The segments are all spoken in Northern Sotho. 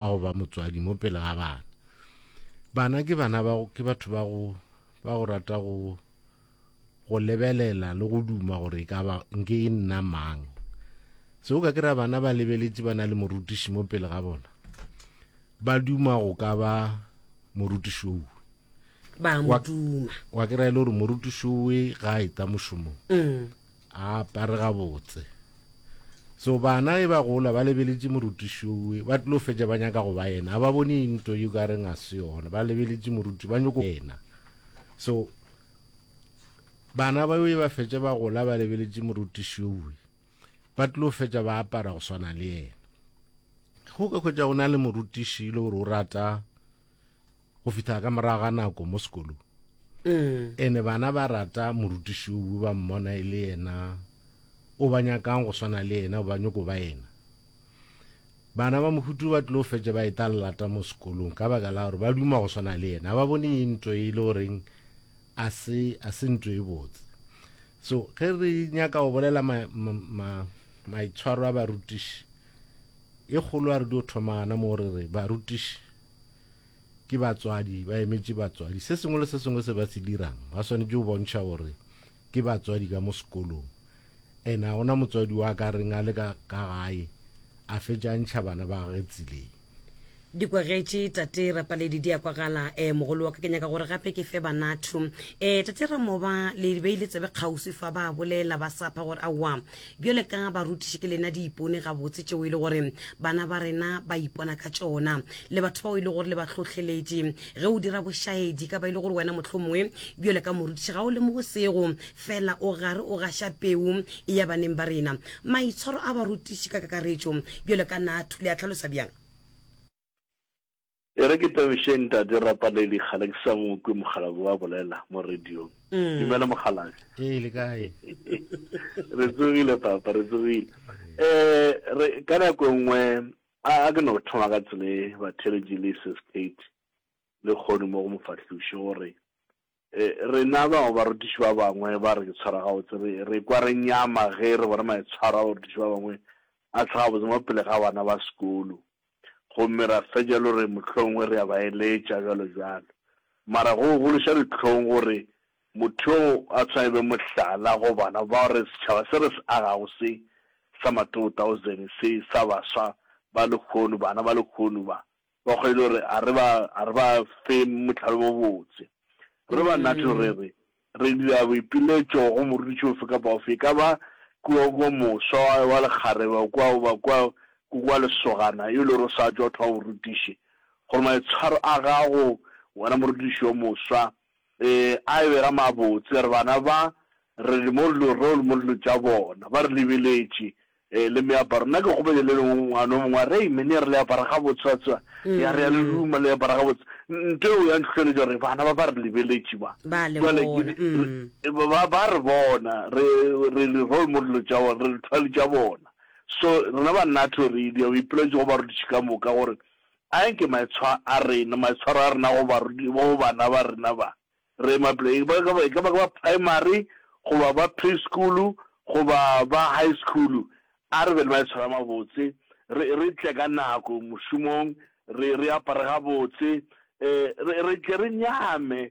a go ba motswadi mo pele ga bana bana ke bana ba ke batho ba go ba go rata go go lebelela le go duma gore e ka ba nke e nna mang se o ka kry-a bana ba lebeletse ba na le morutiši mo pele ga bona ba duma go ka ba morutiši o ba moduma wa kry-a e le gore morutiši owe ga a eta mošomong mm. a apare gabotse so bana e ba gola ba lebeletše morutišowe ba tlilo fetša ba nyaka go ba yena a ba bone into yo ka reng a se yona ba lebeletše moruti ba nyoko yena so bana ba e ba fetša ba gola ba lebeletše morutišowe ba tlilo fetša ba apara go swana le yena go ka hwetša go na le morutiši e le gore o rata go fihla ka morago ga nako mo sekolong mm. ene bana ba rata morutiši o ba mmona e le yena o ba nyakang go swana le yena o ba nyoko ba yena bana ba mohutu ba tlilo fetše ba eta lelata mo sekolong ka baka la gore ba duma go swana le yena ba bone e ntlo e le goreng a se a se ntlo e botse so ge re nyaka go bolela maitshwaro a barutiši e kgolo a re dio thoma gana mo re re barutiši ke batswadi, ba emetše batswadi. Se sengwe le se sengwe se ba se dirang ba swanetše go bontšha gore ke batswadi ka mo sekolong. And ga gona motswadi wa ka reng a le ka gae a fetša a ntšha bana ba gage tseleng. Di kwagetše Tate Rapaledi di a kwagala. Eh, mogolo wa ka ke nyaka gore gape ke fe bana two. Eh, Tate Ramoba, le beile tsebe kgauswi fa, ba bolela ba sapha gore aowa, Bjale ka barutiši ke lena diipone gabotse tšeo e le gore bana ba rena ba ipona ka tšona, le batho bao e le gore le ba hlohleletše. Ge o dira bošaedi, e ka ba e le gore wena mohlomongwe bjale ka morutiši ga o lemoge sego, feela o gare o gaša peu e ya baneng ba rena. Maitshwaro a barutiši ka kakaretšo bjale ka Nathu le a hlalosa bjang? E re ke tabiše Ntate Rapaledi kgale ke sa mo kwe mokgalabje wa bolela mo radiong. Dumela mokgalabje. Ee le kae? Re tsogile papa re tsogile. Eh re ka nako nngwe a a ke no thoma ka tsele batheletši le sis Kate le kgono mo go mofahluše gore Rena bao barutiši ba bangwe ba re ke tshwara gabotse re re ekwa re nyama ge re bona maitshwaro a barutiši ba bangwe a tla gabotse mo pele ga bana ba sekolo gomme ra fetša e le gore mohlomongwe re a ba eletša, bjalo bjalo. Mara go gološa dihlong gore motho yo a tshwanela e be mohlala go bana bao re setšhaba se re se agago se sa ma-2000 se sa baswa ba lehono, bana ba lehono ba. Ba kgwele o re, A re ba, a re ba fe mohlalo wo botse. Re ba nathe re re, Re dira boipiletšo go morutiši ofe kapa ofe, e ka ba kua, kua moswa wa, wa lekgarebe, kua, goba kua, ku, kua lesogana, yo e lego gore o sa tšwa go thoma borutiši, gore maitshwaro a gago, wena morutiši yo moswa, Re a e bega mabotse, re bana ba, re le mo dilo reo le mo dilo tša bona. Ba re lebeletše. Ee, le meaparo. Nna ke kgopetše le lengwe ngwana o mongwe a re, Amen, ya re le apara gabotse, wa tseba. Ya re, ya le duma, le apara gabotse. Ntho eo ya ntlhohleletša gore bana ba ba re lebeletše ba. Ba le Jwale ke bona. di- Mm. re- ba, ba, ba re bona, re, re le role model tša bona, re lethwali tša bona. So, rena ba Nato re idia, re ipeletše go barutiši ka moka gore Anke maitshwa a rena, maitshwaro a rena go barudi, go bana ba rena ba re ema pele, e ka ba, e ka ba ke ba primary, goba ba preschool, goba ba high school, a re be le maitshwaro a mabotse, re, re tle ka nako mošomong, re, re apare gabotse, eh, re, re tle re nyame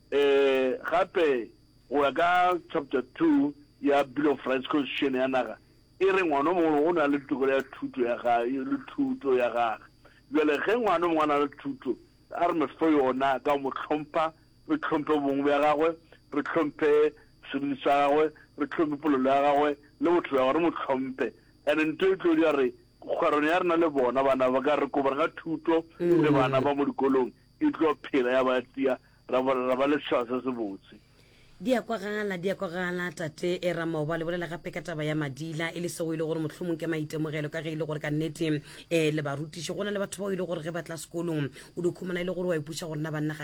Ee, gape go ya ka Chapter 2 ya Bill of Rights, Konstitušene ya naga e re ngwana o mongwe o na le tokelo ya thuto ya gage le thuto ya gage. Bjale ge ngwana o mongwe a na le thuto, a re mo fe yona ka go mo hlompha, re hlomphe bobong bja gagwe, re hlomphe seriti sa gagwe, re hlomphe polelo ya gagwe le botho bja gagwe, re mo hlomphe. And nto e tlo dira gore kgwerano ya rena le bona, bana ba ka re kobara ka thuto le bana ba mo dikolong e tlo phela ya ba tia, ra bona ra ba le setšhaba se se botse. Di a kwagala, di a kwagala, Tate Ramoba. Le bolela gape ka taba ya Madila, e le seo e le gore mohlomong ke maitemogelo, ka ge e le gore ka nnete um le barutiši, go na le batho bao e le gore ge ba tla sekolong o di khumana e le gore wa ipuša gore na ba nnagane